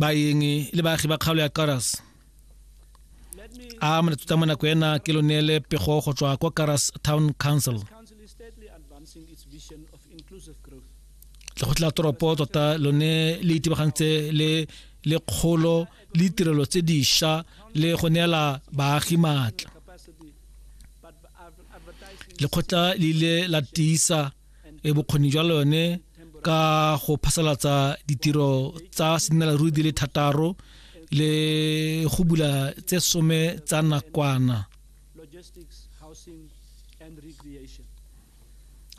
baeng le baagi ba kgaolo ya karas a molatsutsa mo nako ena ke lo neele pego go tswa kwa karas town council lekgotla toropo tota lone le itebagantse le le kgolo le ditirelo tse dišwa le go neela baagi maatla lekgotla le ile la tiisa e bokgoni jwa lone ka go phasalatsa ditiro tsa senelaruri di le thataro le go bula tse some tsa nakwana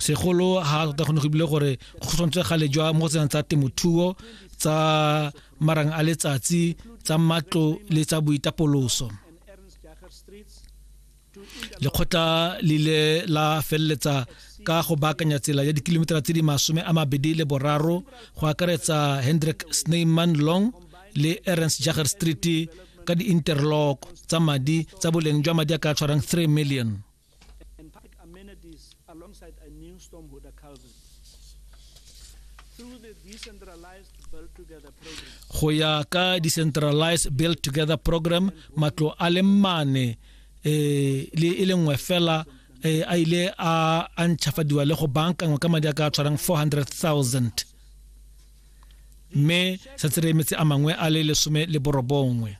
segolo ha tota gone go ebile gore go tshwanetse gale jwa mo go tsenang tsa temothuo tsa marang a letsatsi tsa matlo le tsa boitapoloso lekgotla le ile la feleletsa ka go baakanya tsela ya dikilometara tse di masome a mabedi le boraro go akaretsa hendrik sneyman long le ernst jager street ka di-interlock tsa madi tsa boleng jwa madi a ka tshwarang 3 million go ya ka decentralized build together program matlo a le mane eh, le e le nngwe fela eh, a ile a a ntšhafadiwa le go bankangwa ka madi a ka tshwarang 400000 mme setse re emetse a mangwe a le lesome le borobongwe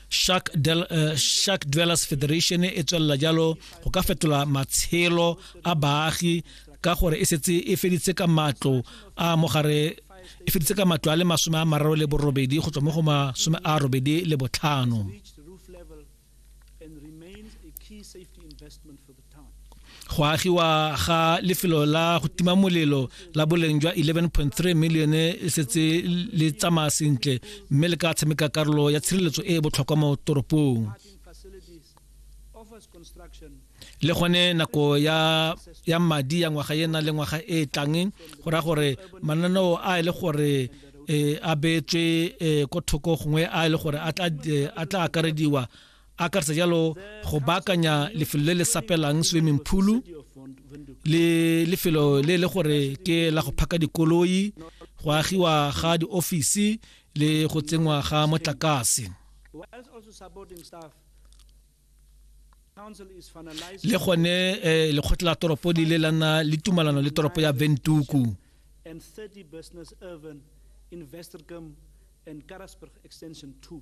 shark, del, uh, shark dwellers federation e tswelela jalo go ka fetola matshelo a baagi ka gore e setse e feditse ka matlo a mogare e feditse ka matlo a le masome a mararo le borobedi go tswa mo go masome a robedi le botlhano Go agiwa ga lefelo la go tima molelo la boleng jwa 11.3 milione le setse le tsamaya sentle mme le ka tshameka karolo ya tshireletso e e botlhokwa mo toropong. le gone nako ya ya madi ya ngwaga e na le ngwaga e tlang go ra gore mananeo a e le gore e a betswe e, ko thoko gongwe a e le gore a tla e, a tla akarediwa a akarsa jalo go baakanya lefelo le le sapelang swimming pool le lefelo le le gore ke la go phaka dikoloi go agiwa ga di office le go tsengwa ga motlakase le gone eh, lekgotla la toropo di le la nna le tumalano le toropo ya ventuku and 30 business urban in Westergem and Karasburg extension 2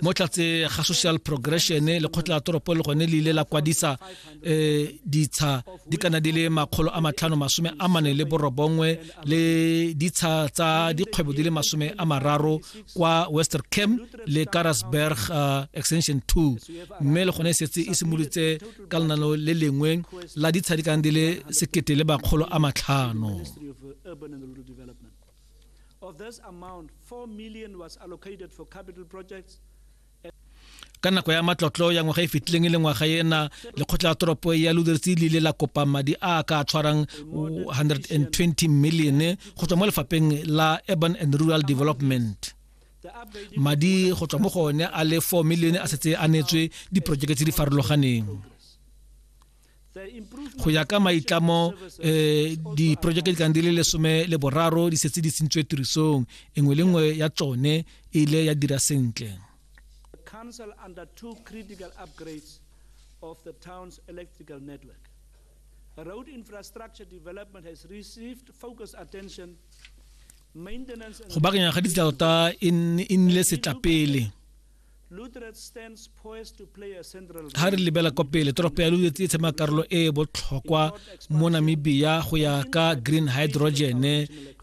mo tlatse ga social progression lekgotla la toropo le gone le ile la kwadisa eh ditsha di kana di le makgolo a matlhano masome a mane le borobongwe le ditsha tsa dikgwebo di le masome a mararo kwa wester camp le karasberg uh, extension 2 mme le gone e setse e simolotse ka lenano le lengwe la ditsha di kana di le sekete le makgolo a matlhano Of this amount, 4 million was allocated for capital projects ka nako ya matlotlo ya ngwaga e fetileng e le ngwaga ena lekgotla la toropo ya ludertse le ile la kopa madi a ka tshwarang 120 million go tswa mo lefapheng la urban and rural development madi go tswa mo go one a le 4 million a setse a neetswe diporojeke tse di farologaneng go ya ka maitlamo eh diprojeke di tlang di le lesome le boraro di setse di tsentswe tirisong engwe le nngwe ya tsone e ile ya dira sentle council undertook critical upgrades of the town's electrical network road infrastructure development has received focused attention go bakanya ga ditsela tota e nnile setlapele Ga re lebela kwa pele toropo ya Luderitz e tshema karolo e e botlhokwa mo Namibia go ya ka green hydrogen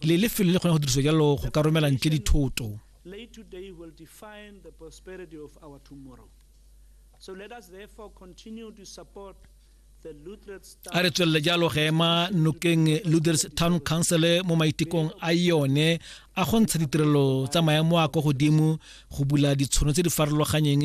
le lefelo le kgone go dirisiwa jalo go ka romela ntle dithoto. Late today will define the prosperity of our tomorrow. So let us therefore continue to support a re tswelele jalo go ema nokeng luders town council mo maitekong a yone a go ntsha ditirelo tsa maemo a kwa godimo go bula ditshono tse di farologanyeng